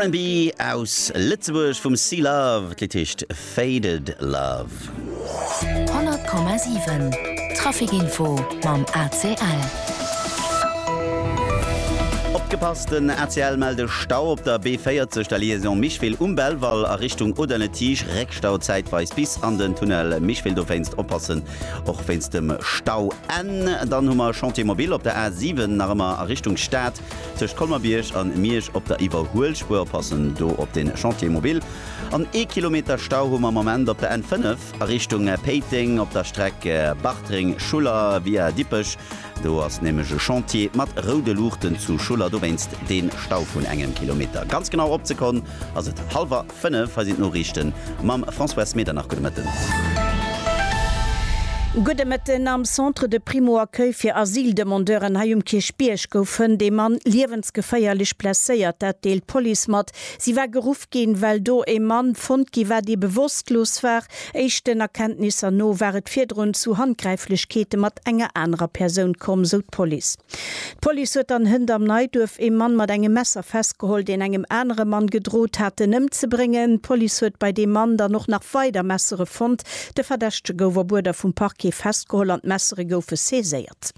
RB aus Lëtzebuerg vum C-Love, d'Lidd heescht Faded Love. 100,7 Trafic Info mam ACL. Opgepasst, den ACL mellt e Stau op der B40 der Liaison Micheville um Belval a Richtung Audun-le-Tige, Réckstau zäitweis bis an den Tunnel Micheville, dowéinst oppassen Och wéinst dem Stau N. Dann hu mer Chantier Mobil op der A 7 nach ëmmer a Richtung Stad tëscht Colmer-Bierg an Miersch op der Iwwerhuelspuer. Oppassen do op den Chantier Mobil. An ee Kilometer Stau hu mer am Moment op der N 5 a Richtung Péiteng op der Streck Bartreng-Schuller via Dippech. Do ass nämlech e Chantier mat roude Luuchten zu Schuller. Dowéinst dee Stau vun engem Kilometer. Ganz genau opzekon ass et hallwer. 5, Hei sinn d'Noriichten mam François Smeder. Nach gudde Mëtten. Gudde Mëtten. Am Centre de Primo-Accueil fir Asyldemandeuren hei um Kierchbierg gouf hënt ee Mann liewensgeféierlech blesséiert. Dat deelt d'Police mat. Si war geruff ginn, well do ee Mann fonnt gi war, dee bewosstlos war. Éischten Erkenntnisser no war et virdrun zu Handgräiflechkeete mat enger anerer Persoun komm, sou d'Police. D'Police huet an Hënt am Neiduerf ee Mann mat engem Messer festgeholl, deen engem anere Mann gedrot hat, en ëmzebréngen. D'Police huet bei deem Mann dann och nach weider Messere fonnt. De Verdächtege gouf op Uerder vum Parquet festgeholl an d'Messere goufe saiséiert.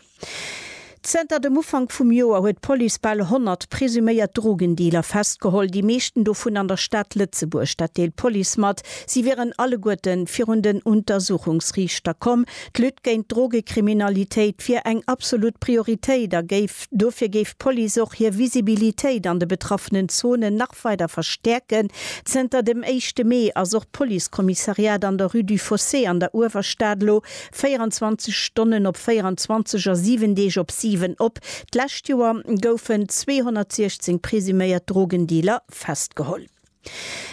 Zënter dem Ufank vum Joer huet d'Police bal 100 presuméiert Drogendealer festgeholl, déi meeschten dovun an der Stad Lëtzebuerg. Dat deelt d'Police mat. Si wieren alleguerte virun den Untersuchungsriichter komm. D'Lutte géint d'Drogekriminalitéit wier eng absolut Prioritéit a géif dofir géif d'Police och hir Visibilitéit an de betraffenen Zonen nach weider verstäerken. Zënter dem éischte Mee ass och d'Policekommissariat an der Rue du Fossé an der Uewerstad elo 24 Stonnen op 24 a 7 Deeg op 7 op. D'lescht Joer goufen 216 presuméiert Drogendealer festgeholl.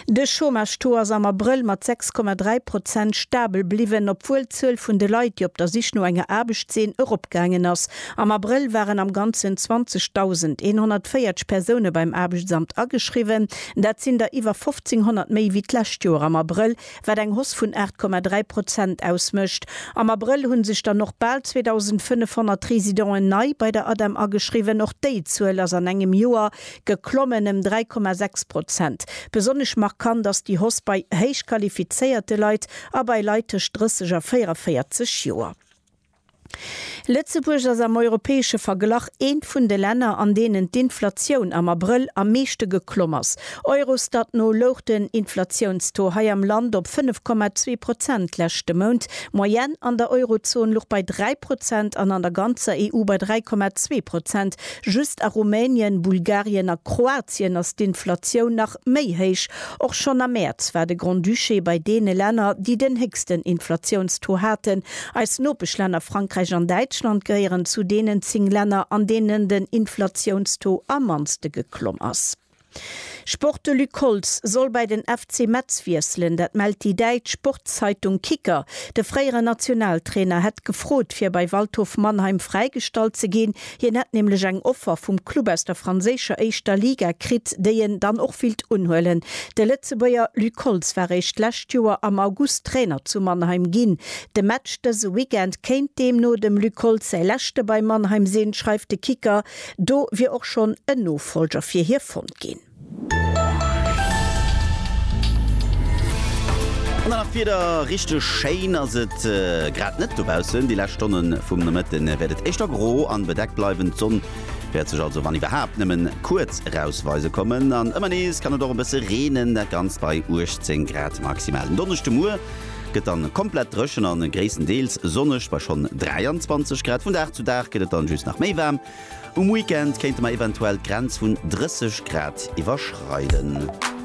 De Chômage-Taux ass am Abrëll mat 6,3 Prozent stabel bliwwen, obwuel d'Zuel vun de Leit, déi op der Sich no enger Aarbecht sinn, eropgaangen ass. Am Abrëll waren am Ganzen 20.140 Persoune beim Aarbechtsamt ageschriwwen. Dat sinn der iwwer 1.500 méi wéi d'lescht Joer am Abrëll, wat eng Hoss vun 8,3 Prozent ausmécht. Am Abrëll hu sech dann och bal 2.500 Residenten nei bei der ADEM ageschriwwen. Och déi Zuel ass an engem Joer geklommen ëm 3,6 Prozent. Besonnesch markant ass déi Hausse bei héich qualifizéierte Leit a bei Leit tëscht 30 a 44 Joer. Lëtzebuerg ass am europäesche Verglach eent vun de Länner, an deenen d'Inflatioun am Abrëll am meeschte geklomm ass. Eurostat no louch den Inflatiounstaux hei am Land op 5,2 Prozent leschte Mount. D'Moyenne an der Eurozon luch bei 3 Prozent an an der ganzer EU bei 3,2 Prozent. Just a Rumänien, Bulgarien a Kroatien ass d'Inflatioun nach méi héich. Och schonn am Mäerz war de Grand-Duché bei deene Länner, déi den héchsten Inflatiounstaux haten. Eis Nopeschlänner Frankräich an Däitschland gehéieren zu deenen 10 Länner, an deenen den Inflatiounstaux am mannste geklomm ass. Sport De Luc Holtz soll bei den FC Metz wiesselen, dat mellt déi däitsch Sportszeitung Kicker. De fréieren Nationaltrainer hätt gefrot, fir bei Waldhof Mannheim fräigestallt ze ginn. Hien hätt nämlech eng Offer vum Club aus der franséischer éischter Liga kritt, déi en dann och willt unhuelen. De Lëtzebuerger Luc Holtz war eréischt d'lescht Joer am August Trainer zu Mannheim ginn. De Match dëse Weekend kéint deemno dem Luc Holtz säi leschte bei Mannheim sinn, schreift de Kicker. Do wier och schonn en Nofolger fir hie fonnt ginn. An dann nach d'Wieder, Richteg schéin ass et grad net dobaussen. Déi lescht Stonne vum Nomëtte wäert et éischter gro an bedeckt bleiwen. D'Sonn wäert sech also, wann iwwerhaapt, nëmmen kuerz erausweise kommen. An ëmmer nees kann et och e bësse reenen, dat Ganzt bei 18 Grad maximal. Den Donneschdemuer Gëtt dann komplett dréchen an gréisstendeels sonneg bei schonn 23 Grad. Vun Dag zu Dag gëtt et dann just nach méi waarm. Um Weekend kéinte mer eventuell d'Grenz vun 30 Grad iwwerschreiden.